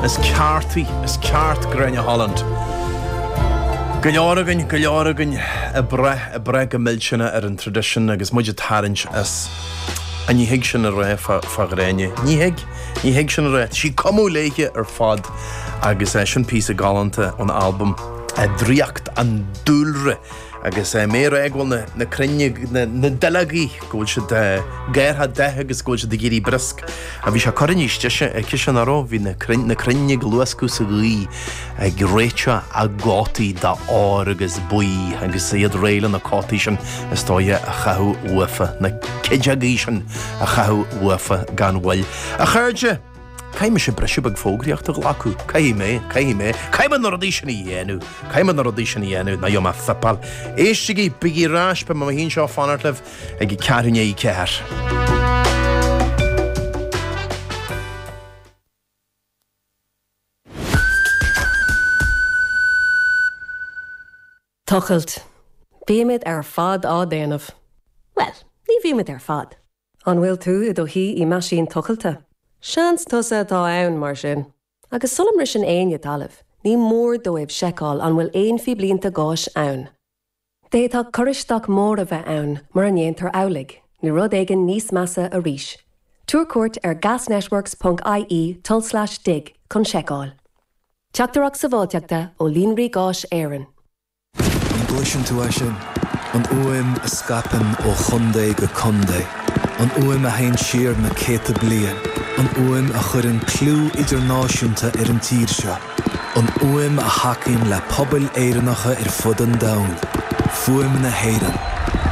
Is ceart í, is ceart í Gráinne Holland. Go leor againn, go leor againn ag brath, ag brath go millteanach ar an tradition agus muid ag tarraingt as. Ach ní thig sin a rá fá Ghráinne? Ní thig, ní thig sin a rá. Tá sí cumtha léithe ar fad agus é sin píosa galánta ón albam Draíocht an Dúlra. agus mé a rá go bhfuil na crainn, na duilleogaí, go bhfuil siad ag athrú datha agus go bhfuil siad ag éirí briosc. A bhí sé curtha níos deise ag ciseán aró, bhí na crainn na crainn ag luascadh sa ghaoith ag réiteach a gcótaí dath óir agus buí agus iad réidh le na cótaí sin is dóigh a chaitheamh uafa, na cuilteogaí sin a chaitheamh uafa gan mhoill. A chairde! Caithfidh mise briseadh beag fógraíocht a ghlacadh. Caithfidh mé, caithfidh mé, caithfidh mé na rudaí sin a dhéanamh, caithfidh mé na rudaí sin a dhéanamh, ná gheobhaidh mé fuipeáil. Éistigí, bígí ar ais, beidh mé mo shuí anseo a fanacht libh ag a ceathrú i ndiaidh a ceathair. Tochailt, Bímid ar fad á déanamh. Bhuel, ní bhímid ar fad. An bhfuil tú i do shuí i meaisín tochailte? Seans tusa atá ann, mar sin. Agus sula mbriseann éinne talamh, ní mór dóibh seiceáil an bhfuil aon phíblínte gáis ann. D'fhéadfadh cur isteach mór a bheith ann mura ndéantar amhlaidh, nó rud éigin níos measa arís. Tabhair cuairt ar gasnetworks ponc ie tulslais dig chun seiceáil. Teachtaireacht Sabháilteachta ó Líonraí Gáis Éireann. An gcloiseann tú é sin? An fhuaim a scaipeann ó chontae go contae. An fhuaim a théann siar na céadta bliain. An fhuaim a chuireann clú idirnáisiúnta ar an tír seo. An fhuaim a thacaíonn le pobail Éireannacha ar fud an domhain. Fuaim na hÉireann.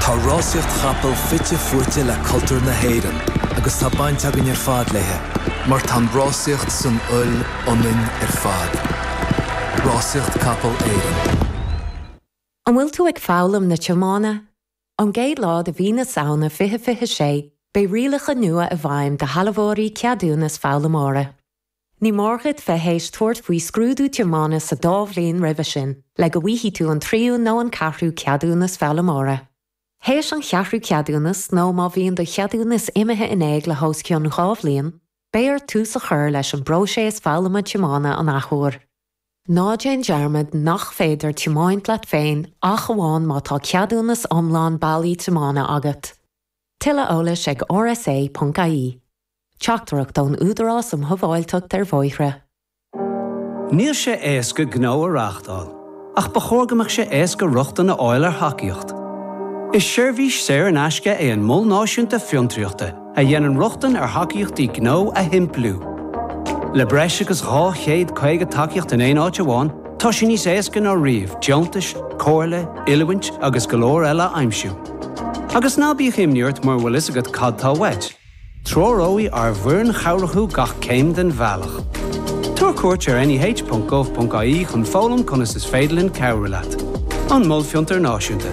Tá rásaíocht chapall fite fuaite le cultúr na hÉireann agus tá baint againn ar fad léithe mar tá an rásaíocht san fhuil ionainn ar fad. Rásaíocht Capaill Éireann. An bhfuil tú ag foghlaim na tiomána? Ón gcéad lá de mhí na Samhna 2026, beidh rialacha nua i bhfeidhm do shealbhóirí ceadúnas foghlaimeora. Ní mór duit bheith théis tabhairt faoi scrúdú tiomána sa dá bhliain roimhe sin le go bhfaighidh tú an tríú nó an ceathrú ceadúnas foghlaimeora. Théis an cheathrú ceadúnas nó má bhíonn do cheadúnas imithe in éag le hós cionn dhá bhliain, Beidh ort tús a chur leis an bpróiséas foghlama tiomána an athuair. Ná déan dearmad nach féidir tiomáint leat féin ach amháin má tá ceadúnas iomlán bailí tiomána agat. Tuilleadh eolais ag rsa.ie. Teachtaireacht ón Údarás um Shabháilteacht ar Bhóithre. Níl sé éasca gnó a reáchtáil, ach ba chóir go mbeadh sé éasca rochtain a fháil ar thacaíocht. Is seirbhís saor in aisce é an Mol Náisiúnta Fiontraíochta a dhéanann rochtain ar thacaíochtaí gnó a shimpliú. Le breis agus 250 tacaíocht in aon áit amháin, tá sé níos éasca ná riamh deontais, comhairle, oiliúint agus go leor eile a aimsiú. Agus ná bíodh imní ort mura bhfuil a fhios agat cad tá uait. Treoróidh ár bhfoireann chabhrach thú gach céim den bhealach. Tabhair cuairt ar neh.gov.ie chun foghlaim conas is féidir linn cabhrú leat. An Mol Fiontair Náisiúnta.